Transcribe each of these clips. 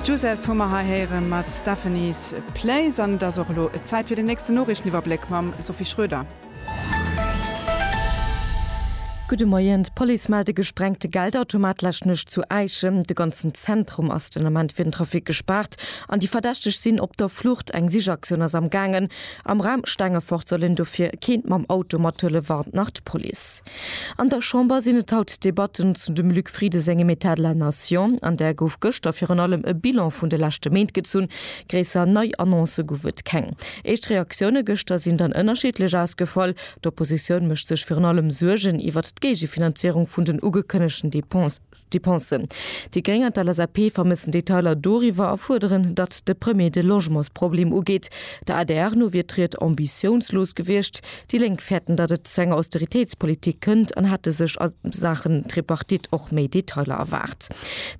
D'Joseph hu mer hei héiere mat Stephanie's Place an et ass och elo Zäit fir den nächsten Noriichteniwwerbléck mam Sophie Schroeder. Gudde Moien, D'Police mellt e gesprengte Geldautomat lescht Nuecht zu Äischen. De ganzen Zentrum ass den Ament fir den Trafic gespaart an déi Verdächteg sinn op der Flucht. Eng Sichaktioun ass am gaangen. Am Raum Stengefort soll een dofir keent mam Auto mathuelen, warnt nach d'Police. An der Chamber sinn et haut d'Debatten zu dem Luc Frieden sengem État de la Nation. An där gouf gëschter virun allem e Bilan vun de leschte Méint gezunn. Gréisser nei Annoncë gouf et keng. Éischt Reaktioune gëschter sinn dann ënnerschiddlech ausgefall. D'Oppositioun mécht sech virun allem Suergen iwwert d'Géigefinanzéierung vun den ugekënnegten Dépenses. Depensen. Déi Gréng an d'LSAP vermëssen Detailer doriwwer a fuerderen, datt de Premier de Logementsproblem ugeet. Der adr no wier d'Ried ambitiounslos gewiescht. Déi Lénk fäerten, datt et zu enger Austeritéitspolitik kënnt an hätte sech a Saachen Tripartite och méi Detailer erwaart.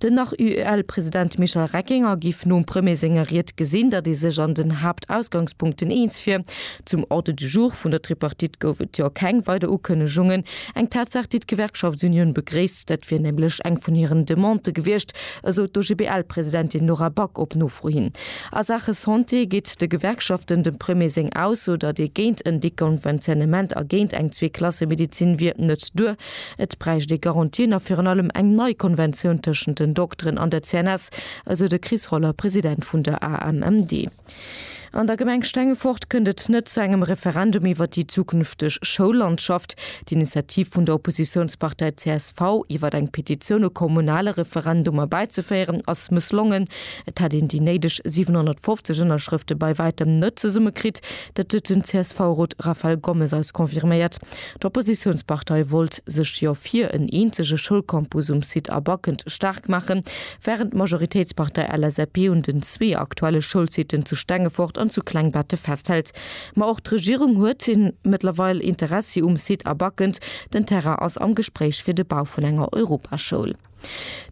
Den nach UEL-President Michel Reckinger géif nom Premier senger Ried gesinn, datt ee sech an den Haaptausgangspunkten eens wier. Zum Ordre du jour vun der Tripartite gouf et jo keng weider Ukënnegungen. Eng Tatsaach, déi d'Gewerkschaftsunioun begréisst. Dat wier nämlech eng vun hiren Demandë gewiescht, esou d'OGBL-Presidentin Nora Back op Nofro hin. A Saache Santé geet de Gewerkschaften dem Premier seng Ausso, datt ee géint en Deconventionnement a géint eng Zweeklassemedezin wier, net duer. Et bräicht ee Garantien a virun allem eng nei Konventioun tëschent den Dokteren an der CNS, esou de Chris Roller, President vun der AMMD. An der Gemeng Stengefort kënnt et net zu engem Referendum iwwer déi zukünfteg Schoullandschaft. D'Initiativ vun der Oppositiounspartei csv, iwwer eng Petitioun e kommunale Referendum erbäizeféieren, ass mësslongen. Et hätt een déi néideg 750 Ënnerschrëfte bei wäitem net zesumme kritt. Dat huet den CSV-Rot Raphael Gommes eis confirméiert. D'Oppositiounspartei wollt sech jo fir en eenzege Schoulcampus um Site Abakennt staark maachen, Wärend d'Majoritéitspartei LSAP un den zwee aktuelle Schoulsiten zu Stengefort an zu Klengbetten festhält. Ma och d'Regierung huet mëttlerweil Interessi um Site a backend den Terrain ass am Gespréich fir de Bau vun enger Europaschoul.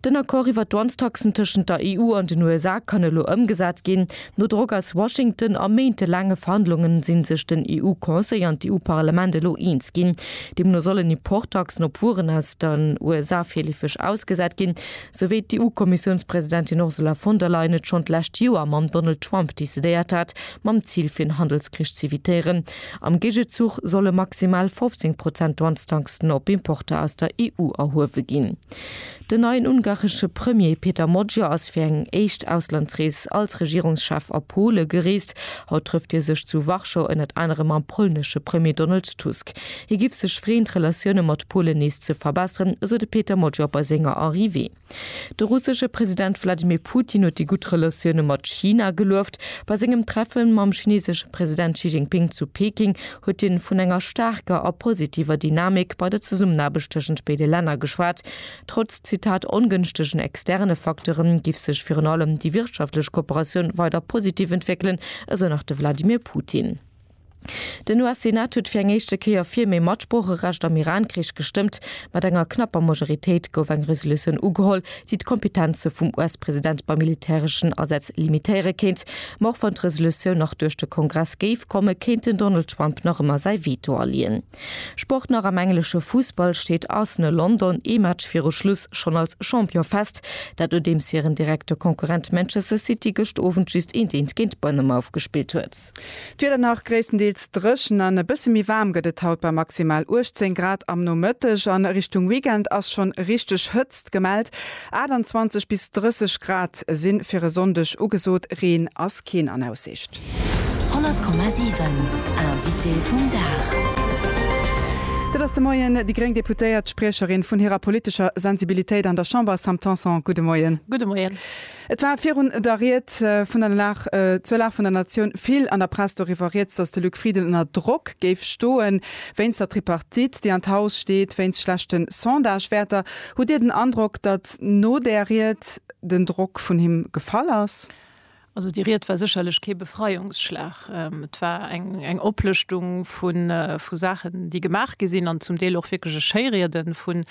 Den Accord iwwer d'Dwanstaxen tëschent der EU an den USA kann elo ëmgesat ginn. No Drock aus Washington a méintelaange Verhandlungen sinn sech den EU-Conseil an d'EU-Parlament elo eens ginn. Deemno sollen Importtaxen op Wueren aus den USA virleefeg ausgesat ginn. sou wéi d'EU-Kommissiounspresidentin Ursula von der Leyen et schonn d'lescht Joer mam Donald Trump decidéiert hat, mam Zil fir en Handelskrich z'evitéieren. Am Géigezuch solle maximal 15 Prozent Douanestaxen op Importer aus der EU erhuewe ginn. Den neien ungaresche Premier Peter Magyar ass fir eng éischt Auslandsrees als Regierungschef a Pole gereest. Haut trëfft hie sech zu Warschau ënnert anerem mam polnesche Premier Donald Tusk. Hie giff sech freeën, d'Relatioune mat Polen nees ze verbesseren, esou de Peter Mojor bei senger Arrivée. De russesche President Wladimir Putin huet déi gutt Relatioune mat China gelueft. Bei sengem Treffe mam chinesesche President Xi Jinping zu Peking huet hien vun enger staarker a positiver Dynamik bei der Zesummenaarbecht tëschent béide Länner geschwat. Trotz, Zitat, ongënschtegen externe Facteure giff sech virun allem déi wirtschaftlech Kooperatioun weider positiv entwéckelen, esou nach de Wladimir Putin. Den US-Senat huet fir eng éischte Kéier fir méi Matsproocherecht am Iran-Krich gestëmmt. Mat enger knapper Majoritéit gouf eng Resolutioun ugeholl, déi d'Kompetenze vum US-President bei militäreschen Asätz limitéiere kéint. Ma och wann d'Resolutioun nach duerch de Kongress géif kommen, kéint den Donald Trump nach ëmmer säi Veto aleeën. Sport nach am englesche Fussball steet Arsenal London ee Match viru Schluss schonn als Champion fest, dat nodeems hiren direkte Konkurrent Manchester City gëscht Owend just eenteent géint Bournemouth gespillt huet. D'Wieder nach gréisstendeels dréchen an e bësse méi waarm gëtt et haut bei maximal 18 Grad am Nomëtteg. A Richtung Weekend ass schonn richteg Hëtzt gemellt. 28 bis 30 Grad si fir e Sonndeg ugesot, Reen ass keen an Aussicht. 100,7 Invité vum Dag. Dat ass de Moien déi gréng Deputéiert, Spriecherin vun hirer politescher Sensibilitéit an der Chamber, Sam Tanson. Gudde Moien. Gudde Moien. Et war virun der Ried vun der Lag zur Lag vun der Natioun vill an der Press doriwwer rieds, datt de Luc Frieden ënner Drock géif stoen, wéinst der Tripartite, déi an d'Haus steet, wéinst schlechte Sondagewäerter. Hutt Dir den Androck, datt no där Ried den Drock vun him gefall ass? Also déi Ried war sécherlech kee Befreiungsschlag. Et war eng Oplëschtung vu Saachen, déi gemaach gi sinn, an zum Deel och wierklech e Schéiriede vun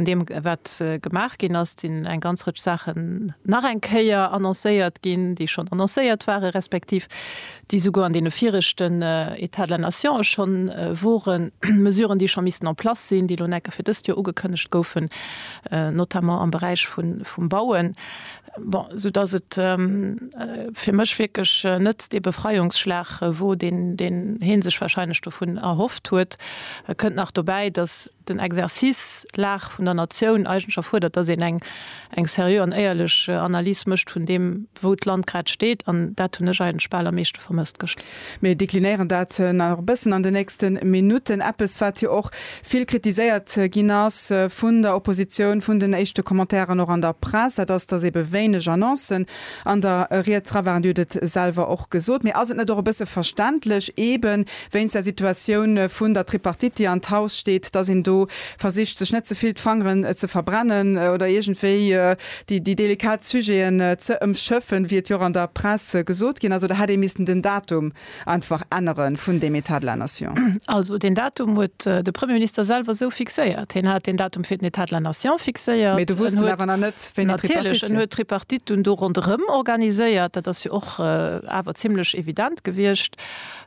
deem, wat gemaach ginn ass. Et sinn eng ganz Rëtsch Saachen nach eng Kéier annoncéiert ginn, déi schonn annoncéiert waren, respektiv déi souguer an deene viregten États de la nation schonn woren, Mesuren, déi scho missten en place sinn, déi elo nekke fir dëst Joer ugekënnegt goufen, notamment am Beräich vum Bauen. Bon, soudass et fir mech wierklech net dee Befreiungsschlag wor, deen hee sech wahrscheinlech dovun erhofft huet. Kënnt nach dobäi, dass. den Exercice Lag vun der Natioun eigentlech erfuerdert, dass een eng seriö an éierlech Analys mécht vun deem, wou d'Land grad steet. An dat hunn ech eigentlech bal am meeschte vermësst gëschter. Mir deklinéieren dat nach e bëssen an den nächste Minutten. Eppes, wat jo och vill kritiséiert ginn ass vun der Oppositioun, vun den éischte Commentairen och an der Press, dat ass, dass eebe wéineg Annoncen an der Ried dra waren. Dir hutt et selwer och gesot. Mee ass et net och e bësse verständlech, eeben wéinst der Situatioun vun der Tripartite, déi an d'Haus steet, datt een do versicht, sech net ze vill d'Fangeren ze verbrennen oder iergendwéi déi delikat Sujeten ze ëmschëffen, wéi et jo och an der Press gesot ginn ass? Oder hätt ee missten den Datum einfach ännere vun deem État de la nation? Also deen Datum huet de Premierminister selwer esou fixéiert. Hien hat deen Datum fir den État de la nation fixéiert. Natierlech, en huet d'Tripartite dunn do ronderëm organiséiert, dat ass jo och awer zimlech evident gewiescht.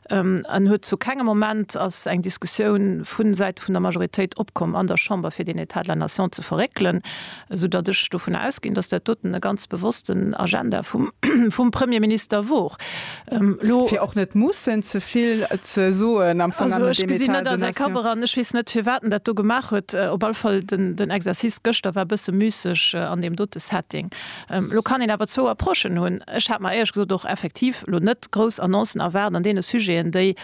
Et huet zu kengem Moment ass eng Diskussioun vun Säite vun der Majoritéit opkomm an der Chamber, fir deen État de la nation ze verréckelen, esou datt ech dovun ausginn, datt dat doten e ganz bewossten Agenda vum Premierminister wor. Elo. Fir och net mussen ze vill ze soen am Fong an deem État de nation. Ech gesinn net, ass eng Kammer an ech weess net, firwat en dat do gemaach huet. Op alle Fall, den Exercice gëschter war e bësse müsseg an deem dote Setting. Elo kann een awer zwou Approchen hunn. Ech hat mer éierch gesot och effektiv elo net grouss Annoncen erwaart an deene Sujeten, déi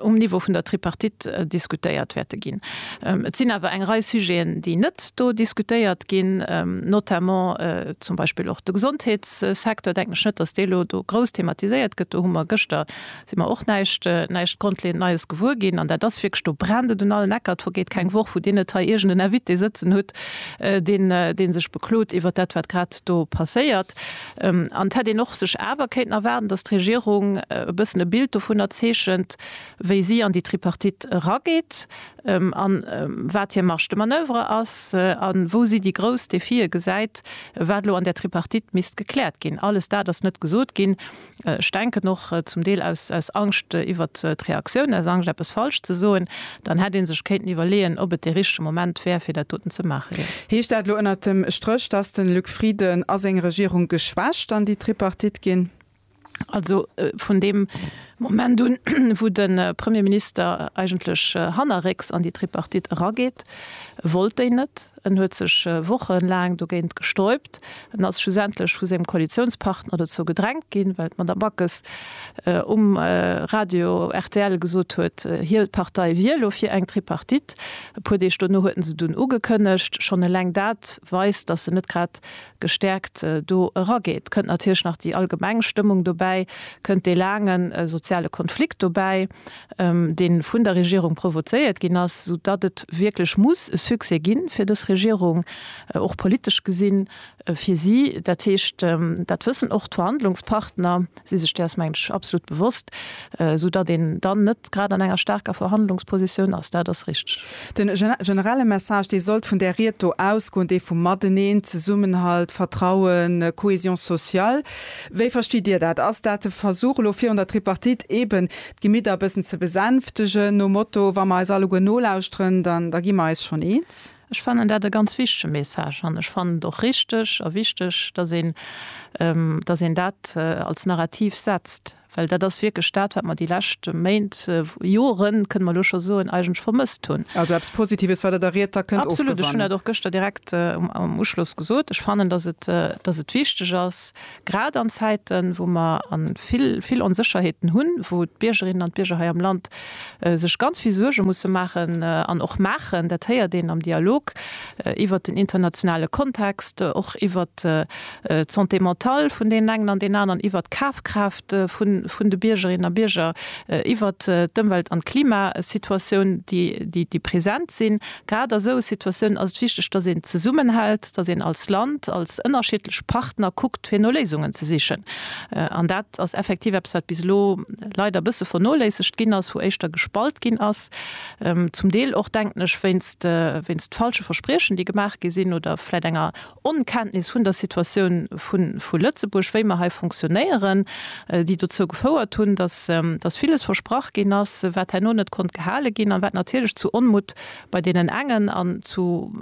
um Niveau vun der Tripartite diskutéiert wäerte ginn. Et sinn awer eng Rei Sujeten, déi net do diskutéiert ginn, notamment zum Beispill och de Gesondheetssecteur, denken ech net, dass dee elo do grouss thematiséiert gëtt. Do hu mer gëschter Sinn mer och näischt, näischt grondleeënd Neies gewuer ginn. An dat ass wierklech, do brennt et un allen Ecker. Et vergeet keng Woch, wou Dir net hei iergend en Invité sëtzen hutt, deen, dee sech beklot iwwert dat, wat grad do passéiert. An et hätt een och sech awer kéinten erwaarden, dass d'Regierung e bëssen e Bild dovunner zeechent, wéi si an déi Tripartite erageet a wat hir Marge de manoeuvre ass a wou si déi grouss Défië gesäit, wat elo an där Tripartite misst gekläert ginn. Alles dat ass net gesot ginn. ech denken och zum Deel aus Angscht iwwert d'Reaktioun, aus Angscht eppes falsch ze soen, dann hätt ee sech kéinten iwwerleeën, ob et dee richtege Moment wär, fir dat doten ze maachen. Heescht dat elo ënnert dem Stréch, dass de Luc Frieden a seng Regierung geschwächt an déi Tripartite ginn? Also vun deem Moment un, wou de Premierminister eigentlech hannerrécks an déi Tripartite erageet, wollt déi net. En huet sech Wochen laang dogéint gesträubt. En ass schlussendlech vu sengem Koalitiounspartner dozou gedrängt ginn, well d'Madame Backes um Radio rtl gesot huet, hir Partei wier elo fir eng Tripartite. E puer Deeg dono huet en se dunn ugekënnegt. Schonn eleng dat weist, dass en net grad gestäerkt do erageet. Kënnt natierlech nach déi allgemeng Stëmmung dobäi, kënnt dee laange soziale Konflikt dobäi, deen vun der Regierung provozéiert ginn ass, esou datt et wierklech muss e Succès gi fir dës Regierung, och politesch gesinn, fir si. Dat heescht, dat wëssen och d'Verhandlungspartner, si sech däers, mengen ech, absolut bewosst, esou datt een dann net grad an enger staarker Verhandlungspositioun ass. Dat ass richteg. Den generelle Message, dee sollt vun där Ried do ausgoen, dee vum Mateneen, Zesummenhalt, Vertrauen, Cohésion sociale. Wéi verstitt Dir dat? Ass dat de Versuch elo virun der Tripartite, eeben d'Gemidder e bëssen ze besänftegen, nom Motto, wa mer eis alleguer nolauschteren, dann da gi mer eis schonn eens. Ech fannen dat e ganz wichtege Message an ech fannen et och richteg a wichteg, datt een, datt een dat als Narrativ setzt, well dat ass wierklech dat, wat mer déi lescht Méint, Joren, kënne mer elo scho soen, eigentlech vermësst hunn. Also eppes Positives, wat Der der Ried da kënnt ofgewannen. Absolut, ech hunn dat och gëschter direkt am Uschloss gesot. Ech fannen, datt et, datt et wichteg ass, Grad an Zäiten, wou mer vill, vill Onsécherheeten hunn, wou d'Biergerinnen an d'Bierger hei am Land sech ganz vill Suerge musse maachen an och maachen, dat héiert een am Dialog iwwert den internationale Kontext, och iwwert d'Santé mentale vun deenen engen an deenen aneren, iwwert d'Kafkraaft vun de Biergerinnen a Bierger, iwwert d'Ëmwelt an d'Klimasituatioun, déi present sinn. Grad a sou Situatiounen ass et wichteg, datt een zesummenhält, datt een als Land, als ënnerschiddlech Partner kuckt, fir no Léisungen ze sichen. An dat ass effektiv eppes, wat bis elo leider e bësse vernoléissegt ginn ass, wou éischter gespalt ginn ass, zum Deel och, denken ech, wéinst falsche Verspriechen, déi gemaach gi sinn, oder vläicht enger Onkenntnis vun der Situatioun vu Lëtzebuerg, wéi mer hei fonctionnéieren, déi dozou gefouert hunn, dass villes versprach ginn ass, wat herno net konnt gehale ginn an wat natierlech zu Onmutt bei deenen engen an zu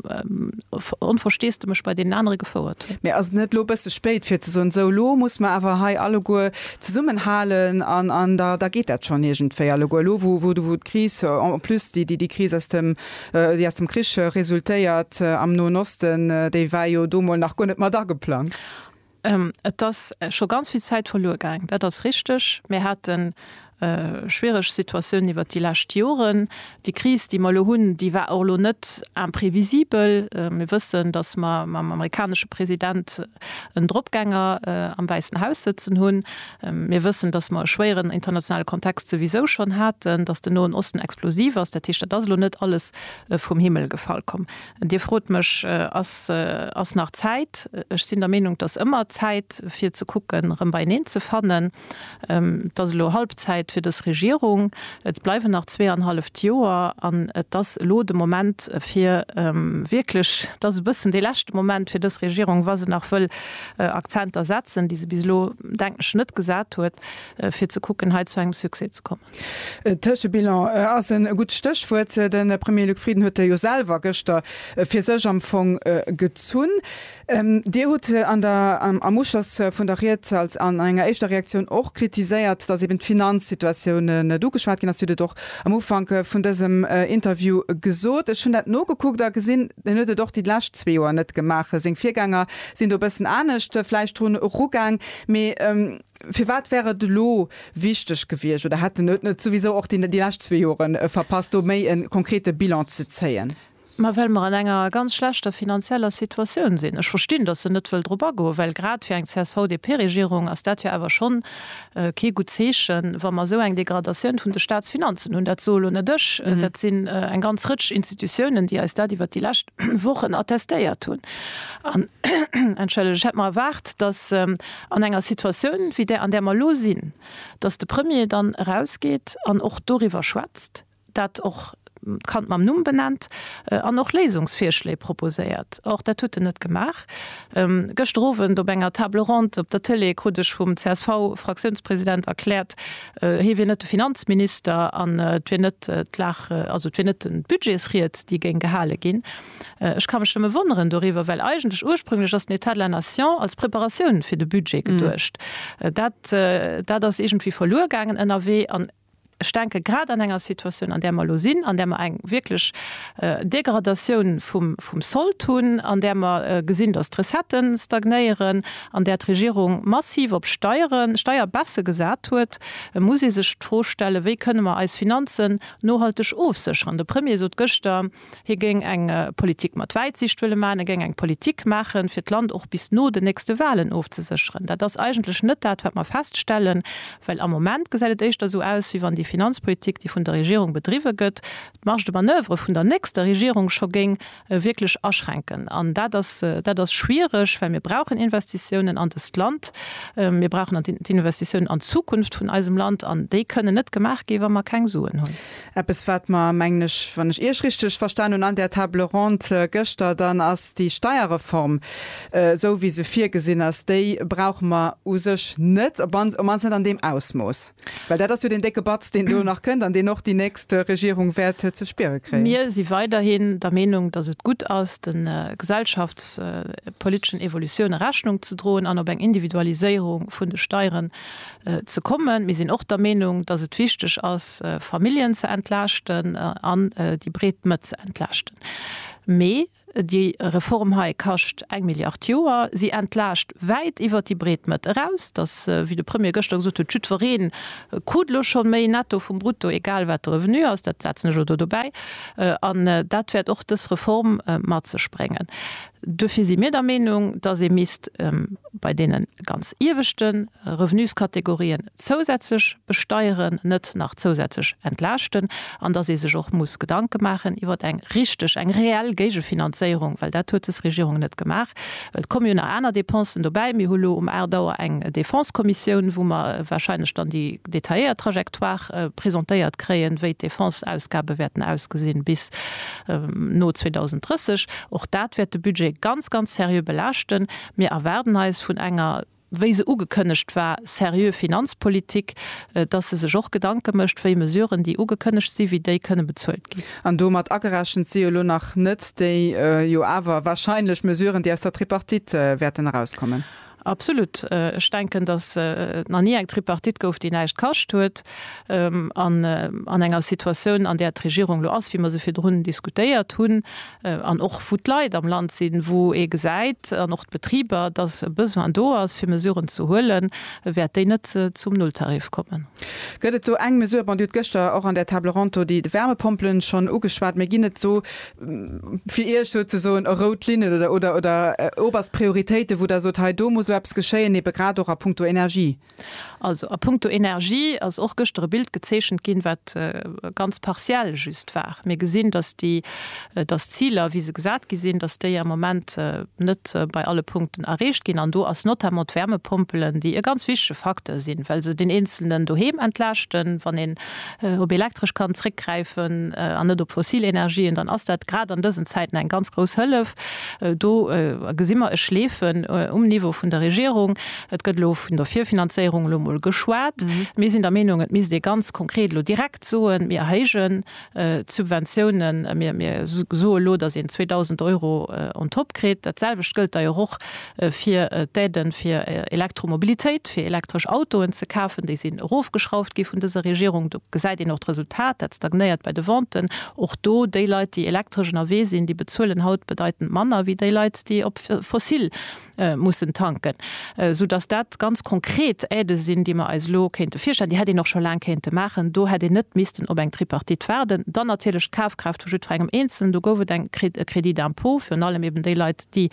Onversteesdemech bei deenen anere gefouert huet. Mee ass et net elo e bësse spéit fir ze soen, esou elo muss mer awer hei alleguer zesummenhalen an da geet dat schonn iergendwéi alleguer? Elo wou d'Kris, en plus déi Kris aus dem. déi aus dem Krich resultéiert am Noen Osten, déi war jo do mol nach guer net mat ageplangt. Et ass scho ganz vill Zäit verluer gaang, dat ass richteg. Mir hate schwiereg Situatiounen iwwert déi lescht Joren. Déi Kris, déi mer elo hunn, déi war och elo net imprevisibel. Mir wëssen, datt mer mam amerikanesche President en Dropgänger am Wäissen Haus sëtzen hunn. Mir wëssen, dass mer e schwéieren internationale Kontext souwisou schonn haten, dass den Noen Osten explosiv ass. Dat heescht, dat ass elo net alles vum Himmel gefall komm. Dir frot mech, Ass, ass nach Zäit? Ech sinn der Meenung, dass ëmmer Zäit fir ze kucken, erëm beieneen ze fannen. Et ass elo Halbzäit fir dës Regierung. Et bleiwen nach zweeanhalleft Joer an et ass elo de Moment fir wierklech, et ass e bëssen dee leschte Moment fir dës Regierung, wa se nach wëll Akzenter setzen, déi se bis elo, denken ech, net gesat huet, fir ze kucken, hei zu engem Succès ze kommen. Tëschebilan ass e gutt Stéchwuert. De Premier Luc Frieden huet e jo selwer gëschter fir sech am Fong gezunn. Dir hutt am Uschloss vun der Ried an enger éischter Reaktioun och kritiséiert, datt eben d'Finanzsituatioun net ugeschwat ginn ass. Dir hutt et och am Ufank vun dësem Interview gesot. Ech hunn dat nogekuckt a gesinn, hien huet et och déi lescht zwee Joer net gemaach. Seng Virgänger Sinn do bëssen anescht vläicht drun erugaang. Mee firwat wär et elo wichteg gewiescht oder hätt den et net souwisou och déi lescht zwee Jore verpasst, do méi e konkrete Bilan ze zéien? Ma well mer an enger ganz schlechter finanzieller Situatioun sinn. Ech verstinn, datt en net wëll drop agoen, well grad fir eng CSV-DP-Regierung ass dat jo awer schonn Kee gutt Zeechen, wa mer esou eng Degradatioun vun de Staatsfinanzen hunn. Dat soe elo net ech, dat sinn eng ganz Rëtsch Institutiounen, déi eis dat iwwert déi lescht Wochen attestéiert hunn. An, entschëllegt, ech hätt mer erwaart, datt an enger Situatioun wéi där, an där mer elo sinn, datt de Premier dann erausgeet an och doriwwer schwätzt, dat och d'Kand mam Numm benennt an och Léisungsvirschléi proposéiert. Och dat hutt en net gemaach. Gëschter Owend op enger Table ronde op der Tëlee krut ech vum CSV-Fraktiounspresident erkläert, hie wier net de Finanzminister an et wier net d'Lag, also et wier net d'Budgetsried, déi géing gehale ginn. Ech ka mech nëmme wonneren doriwwer, well eigentlech ursprünglech ass den État de la Nation als Preparatioun fir de Budget geduecht. Dat ass iergendwéi verluer gaangen ënnerwee. Ech denke grad an enger Situatioun, an där mer elo sinn, an där mer eng wierklech Degradatioun vum Sold hunn, an där mer gesinn, datt d'Recettë stagnéieren, an där d'Regierung massiv op Steieren, Steierbaissen gesat huet, muss ee sech d'Fro stellen, Wéi kënne mer eis Finanzen nohalteg ofsécheren? De Premier sot gëschter, Hie géing eng Politik mat Wäitsiicht wëlle maachen. E géing eng Politik maachen, fir d'Land och bis no den nächste Walen ofzesécheren. Dat ass eigentlech net dat, wat mer feststellen, well am Moment gesäit et éischter esou aus, wéi wann déi Finanzpolitik, déi vun der Regierung bedriwwe gëtt, d'Marge de manoeuvre vun der nächster Regierung scho géing wierklech aschränken. An dat ass, dat ass schwierig, well mir brauchen Investitiounen an dëst Land. Mir brauchen d'Investitiounen an d'Zukunft vun eisem Land an déi kënnen net gemaach gi wa mer keng Suen hunn. Eppes, wat mer, mengen ech, wann ech Iech richteg verstan hunn, an där Table ronde gëschter, dann ass déi Steierreform, esou wéi se virgesinn ass, déi brauche mer u sech net, op mannst net an deem Ausmooss. Well dat ass jo deen décke Batz, deen do nach kënnt an deen och déi nächst Regierung wäert ze spiere kréien. Mir si weiderhin der Meenung, dass et gutt ass, de gesellschaftspoliteschen Evolutioune Rechnung ze droen an op eng Individualiséierung vun de Steiere Ze kommen. Mir sinn och der Meenung, dass et wichteg ass, Familljen ze entlaaschten an déi breet Mëtt ze entlaaschten. Mee déi Reform hei kascht eng Milliard Joer. Si entlaascht wäit iwwert déi breet Mëtt eraus. Dass, wéi de Premier gëschter gesot huet, jiddweree krut elo scho méi netto vum brutto, egal wat de Revenu ass, dat setzen ech elo do dobäi. An dat wäert och dës Reform mat sech bréngen. Duerfir si mir der Meenung, dass ee misst bei deene ganz ieweschte Revenuskategorien zousätzlech besteieren, net nach zousätzlech entlaaschten, an dass ee sech och muss Gedanke maachen iwwer eng richteg, eng reell Géigefinanzéierung, well dat huet des Regierung net gemaach. Et komme jo nach aner Dépensen dobäi. Mir hu lo um 8 Auer eng Defensekommissioun, wou mer warscheinlech dann déi detailléiert Trajectoire presentéiert kréien, wéi d'Defenseausgabe wäerten ausgesinn bis no 2030. Och dat wäert de Budget ganz, ganz seriö belaaschten. Mir erwaarden eis vun enger, wéi se ugekënnegt war, seriö Finanzpolitik, dass se sech och Gedanke mécht, wéi Mesuren, déi ugekënnegt sinn, wéi déi kënne bezuelt ginn. An domat agerechent si jo elo nach net déi jo awer warscheinlech Mesuren, déi aus der Tripartite wäerten erauskommen. Absolut. Ech denken, dass et nach ni eng Tripartite gouf, déi näischt kascht huet. An an enger Situatioun, an där d'Regierung elo ass, wéi mer se virdrun diskutéiert hunn, an och wou d'Leit am Land sinn, wou ee gesäit, an och d'Betriber, dass e Besoin do ass, fir Mesuren ze huelen, wäert déi net zum Nulltarif kommen. Gëtt et do eng Mesure, bon, Dir hutt gëschter och an der Table ronde do déi Wärmepompelen schonn ugeschwat, mä ginn et do fir Iech souzesoen e rout Linnen oder, oder, oder oberst Prioritéiten, wou Der sot, hei do muss elo eppes geschéien, ebe grad och a puncto Energie? Also, a puncto Energie ass och gëschter e Bild gezeechent ginn, wat ganz partiell just war. Mir gesinn, datt déi, datt d'Ziler, wéi se gesat gi sinn, datt déi am Moment net bei alle Punkten erreecht ginn. An do ass notamment d'Wärmepompelen, déi e ganz wichtege Facteur sinn, well se deen Eenzelnen doheem entlaaschten, wann een op Elektresch kann zréckgräifen an net op fossil Energien, dann ass dat grad an dësen Zäiten eng ganz grouss Hëllef. Do gesi mer e Schleefen um Niveau vun der Regierung. Et gëtt elo vun der Virfinanzéierung elo emol geschwat. Mir sinn der Meenung, et misst ee ganz konkret elo direkt soen, mir erhéijen d'Subventiounen, mir soe elo, datt een 2.000 Euro on top kritt. Dat selwecht gëllt da jo och fir d'Aiden fir Elektromobilitéit, fir elektresch Autoen ze kafen, déi sinn erofgeschrauft gi vun dëser Regierung. Do gesäit een och d'Resultat, dat stagnéiert bei de Venten. Och do, déi Leit, déi elektresch ënnerwee sinn, déi bezuelen haut bedeitend manner wéi déi Leit, déi op fossil mussen tanken. Soudass dat ganz konkret Aidë sinn, déi mer eis elo kéinte virstellen. Déi hätt een och scho laang kéinte maachen. Do hätt een net missten op eng Tripartite waarden. Dann natierlech d'Kafkraaft vu jiddwerengem Eenzelnen. Do gouf et e Crédit d'impôt, virun allem eben déi Leit, déi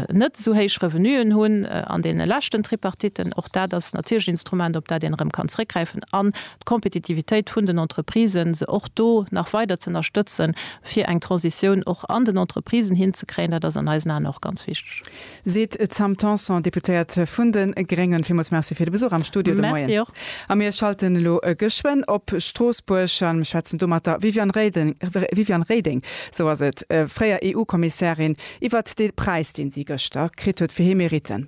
net esou héich Revenuen hunn an deene leschten Tripartitten. Och dat ass natierlech en Instrument, op dat een erëm kann zréckgräifen an d'Kompetitivitéit vun den Entreprisen, se och do nach weider ze ënnerstëtzen, fir eng Transitioun och an den Entreprisen hinzekréien, dat ass an eisen Aen och ganz wichteg. Seet d'Sam Tanson, Deputéiert vun de Gréngen. Villmools Merci fir de Besuch am Studio de Moien. A mir schalten elo geschwënn op Stroossbuerg a schwätzen do mat der Viviane Reding. Sou ass et, fréier EU-Kommissärin, iwwert dee Präis, dee si gëschter kritt huet fir hir Meritten.